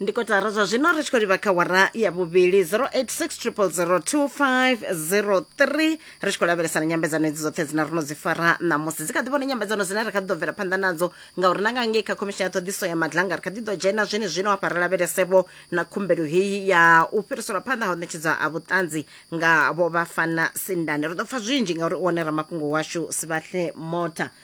ndi kotara zwa zwino ri tshi khou livha kha wara ya vhuvhili 0860002503 ri tshi khou lavhelesa na nyambedzano edzi dzoṱhe dzine ro no dzi fara ṋamusi dzi kha ḓi vhona nyambedzano dzine ri kha ḓi ḓo bvela phanḓa nadzo ngauri na nga ngei kha khomishini ya ṱhoḓiso ya madlanga ri kha ḓi ḓo dzhena zwene zwino hafha ri lavhelesevho na khumbelo heyi ya u fhiriselwa phanḓa ha u ṋetshedzwa ha vhuṱanzi nga vho vhafana sindane ri ḓo pfa zwinzhi ngauri u wane ramafhungo washu sivhahle mota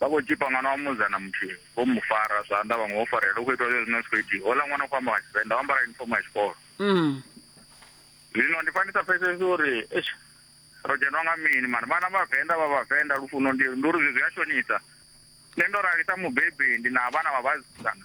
Vha khou tzhipa ṅwana wa musidzana muthihi, vho mu fara zwanḓa vhaṅwe vho farelela. Hu khou itwa zwezwino zwi khou itiwa. Houḽa ṅwana u khou amba nga Tshivenḓa, o ambara yunifomo ya tshikolo. Zwino ndi pfa ndi sa pfesesi uri eish ro dzhenwa nga mini mara vhana vha Venḓa vha Vhavenḓa lufuno ndi ndi uri zwi zwi a shonisa. Nṋe ndo rali sa mubebi ndi na vhana vha vhasidzana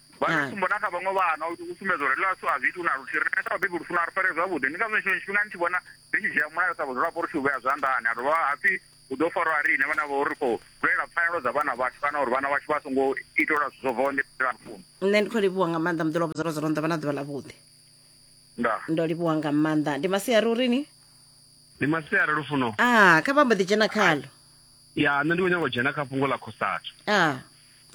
vha ri tsumbo na kha vhaṅwe vhana u sumbedza uri ḽashu a zwi iti na luthihi rine sa vhabebi lu funa ri fare zwavhuḓi ndi ngazwo tshiṅwe tshifhinga ni tshi vhona ri tshi dzhia mulayo sa vhadzulapo ri tshi u vhea zwanḓani a dovha hapfi hu ḓo farwa a ri ine vhana vho ri khou lwela pfanelo dza vhana vhashu kana uri vhana vhashu vha songo itelwa zwithu zwo bvaho nḓila lufuno nṋe ndi khou livhuwa nga maanḓa muḓi lwa vhudzolo zwo ronḓa vha na ḓuvha ḽa vhuḓi nda ndo livhuwa nga maanḓa ndi masiari uri ni ndi masiari lufuno a kha vha mbo ḓi dzhena khalo ya nṋe ndi khou nyanga u dzhena kha fhungo ḽa khosathu a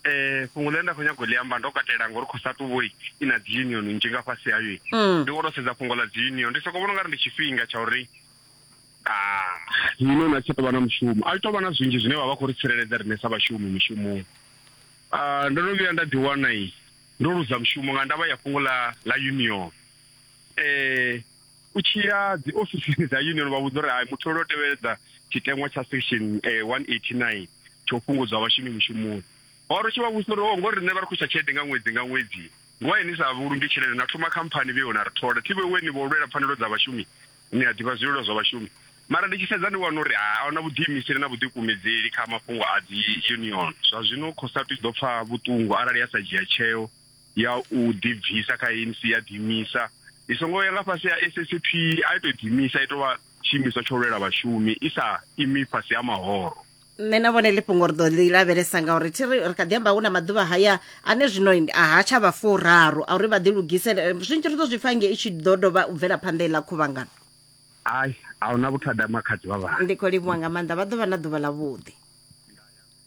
eh fhungo ḽine nda khou nyago ḽi amba ndo katela ngori khou sa tuvoi i na dzi union nzhi nga fhasi hayo mm. ndi wono sedza fhungo ḽa dzi union ndi soko vhona ungari ndi tshifhinga tsha uri ah, union a tshi tovha na mushumo a tovha na zwinzhi zwine vha vha khou ri tsireledza rine sa vhashumi mishumoni ah, ndo no vhuya nda ḓi wana i ndo luza mushumo nga ndavha ya fhungo ḽa ḽa union eh u tshi ya dzi ofisini dza union vha vhudza uri hai muthu lwo tevheledza tshiteṅwa tsha section 189 eh, tsho fhungudzwa vhashumi mushumoni wa ri tshi vha vhudzisa uri o oh, ngori riṋe vha ri khwisa tshelede nga ṅwedzi nga ṅwedzi ngwa ni sa vhulungi tshelede na thoma khamphani vhe na ri thola thi vhewe ni vho lwela pfanelo dza vhashumi ni a ḓivha zwililo zwa vhashumi mara ndi tshi sedza ndi wana uri a huna vhuḓiimiseli na vhuḓikumedzeli kha mafhungo a dzi union zwa zwino khosatu i ḓo pfa vhuṱungu arali ya sa dzhia tsheo ya u ḓibvisa kha ANC ya ḓimisa i songo ya nga fhasi ya SSP a ito ḓimisa ito vha tshiimiswa tsho lwela vhashumi i sa imi fhasi ha mahoro nṋe na vhone ḽifhungo ri ḓo ḽi lavhelesa ngauri thi ri ri kha ḓi amba hu na maḓuvha haya ane zwino ha tsha vha furaru a uri vha ḓi lugisele eh, zwinzhi ri ḓo zwi pfa nge i tshi ḓo dovha u bvela phanḓa iḽa khuvhangano ai a huna vhuthada makhadzi vha vha ndi khou livhuwa nga maanḓa vha ḓo vha na ḓuvha ḽa vhuḓi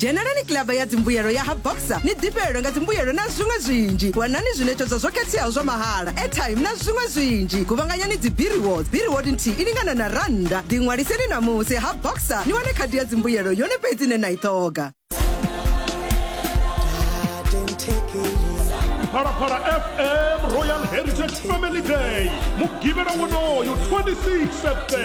dzhenelani kilaba ya dzimbuyelo ya ha boxer ni ḓifhelelwe nga dzimbuyelo na zwiṅwe zwinzhi wanani zwiṋetshedzo zwo khetheaho zwa mahala airtime na zwiṅwe zwinzhi guvhanganyani dzibiriwods biriwod nthihi i lingana na rannda ḓiṅwaliseni ṋamusi ha boxer ni wane khadi ya dzimbuyelo yone fhedzi ine na i ṱhoga phalaphala fm royal heritage family day mugivhela wonoyo 26 september